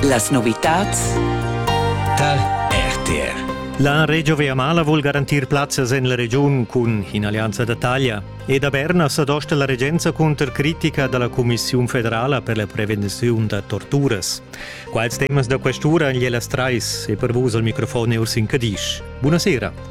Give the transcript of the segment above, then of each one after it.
Las novitads tar RTR. La Regio Viamala vul garantir plazzas en la regiun cun in'allianza da taglia. E da Berna sa dosta la regenza cunter critica da la Cumissiun federala per la prevenziun da torturas. Quals temas da questura en Jelas Trais e per vus al microfon è Ursin Cadisch. Buonasera.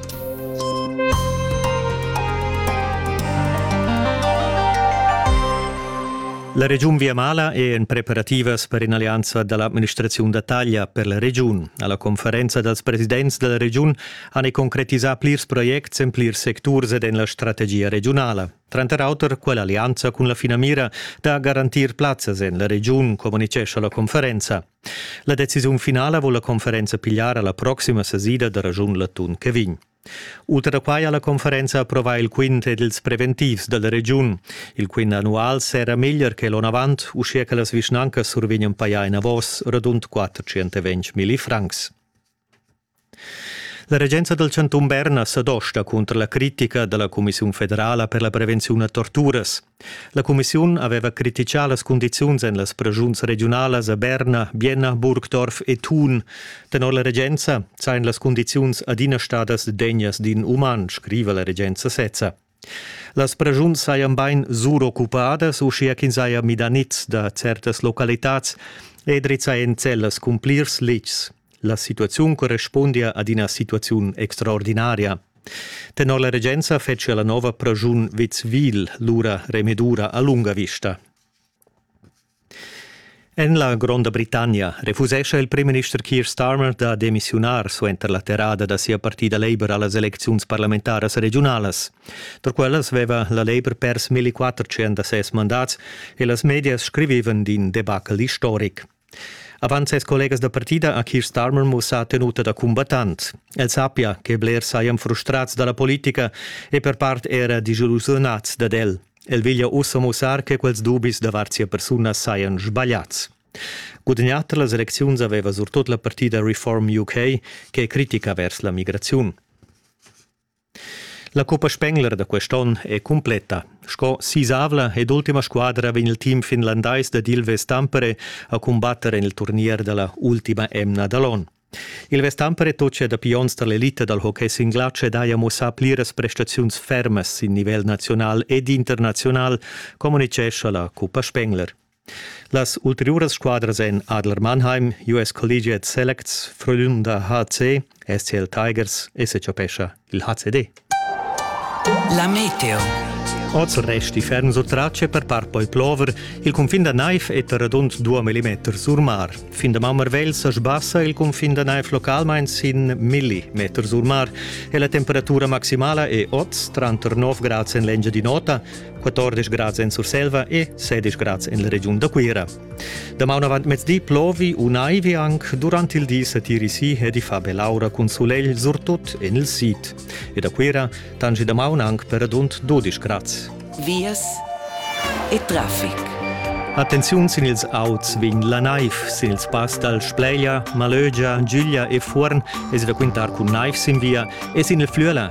La regiun Viamala è en preparativas per in'allianza da l'administraziun da taglia per la regiun. Alla conferenza dals presidents dalla regiun han concretisà plirs projects en plirs secturs ed en la strategia regiunala. Tranter auter quell'allianza cun la finamira da garantir plazzas en la regiun, communicescha la conferenza. La decisiun finala vul la conferenza pigliar alla proxima sesida da ragiun l'atun che vegn. Ultra da quai ha la conferenza approvà il quintet dils preventivs dalla regiun. Il quint annual serra meglier che l'onavant, uschia che las vischnancas survegnan paia enavos radund 420 milli francs. La regenza dal chantun Berna sa dosta cunter la critica da la cumissiun federala per la prevenziun a torturas. La cumissiun aveva critichà las cundiziuns en las preschuns regiunalas a Berna, Bienna, Burgdorf e Thun. Tenor la regenza sajan las cundiziuns adina stadas degnas d'in uman, scriva la regenza sezza. Las pregiuns sajan bain suroccupadas, uschia ch'ins haja midà niz da certas localitads e drizzà en cellas cun plirs letgs. La situaziun correspundia ad ina situaziun extraordinaria. Tenor la regenza fetschia la nova pregiun Witzwil lura remedura a lunga vista. En la Gronda Britannia refusescha il primminister Keir Starmer da demissiunar suenter la terrada da sia partida Labour a las elecziuns parlamentaras regiunalas. Tar quellas veva la Labour pers 1400 da ses mandats e las medias scrivivan d'in debacle istoric. Avant ses collegas da partida ha Keir Starmer mussà tenuta da cumbattant. El sappia che blers sajan frustrads da la politica e per part era disillusionads dad el. El veglia ussa mussar che quels dubis davart sia persuna sajan sbagliads. Gudagnà tar las elecziuns aveva surtut la partida Reform UK che è critica vers la migraziun. La cuppa Spengler da quest'onn è cumpletta. Sco sisavla ed ultima squadra vegn il team finlandais dad Ilves Tampere a cumbatter en il turnier da la ultima emna da l'onn. Il Vestampere tocia dapi onns tar l'elita dal hockey sin glatsch ed haja mussà pliras prestaziuns fermas sin nivel naziunal ed internaziunal, communitgescha la Cuppa Spengler. Las ulteriuras squadras èn Adler Mannheim, US Collegiate Selects, Frölunda HC, SCL Tigers e Secapescha. il HCD. La meteo. Oz resti ferm sut tracce per par poi plover. Il confin da Naif è radund 2 mm sur mar. Fin da Mammerwell sa sbassa il confin da Naif localmain sin millimeter sur mar e la temperatura maximala è oz tranter 9 grads en l'engia di nota, 14 grads en Surselva e 16 grads en la regiun da Cuira. Damaun avant mezdi plovi u naivi anc durant il di setiri si e di fa be l'aura cun sulegl surtut en il sid. E da Cuira tangi damaun anc per adunt 12 grads. Vias e traffic. Attenziun sin ils auts vegn la naiv, sin ils pass dal Spleia, Malögia, Giglia e Fuorn es da quintar cun naiv sin via e sin il Flüela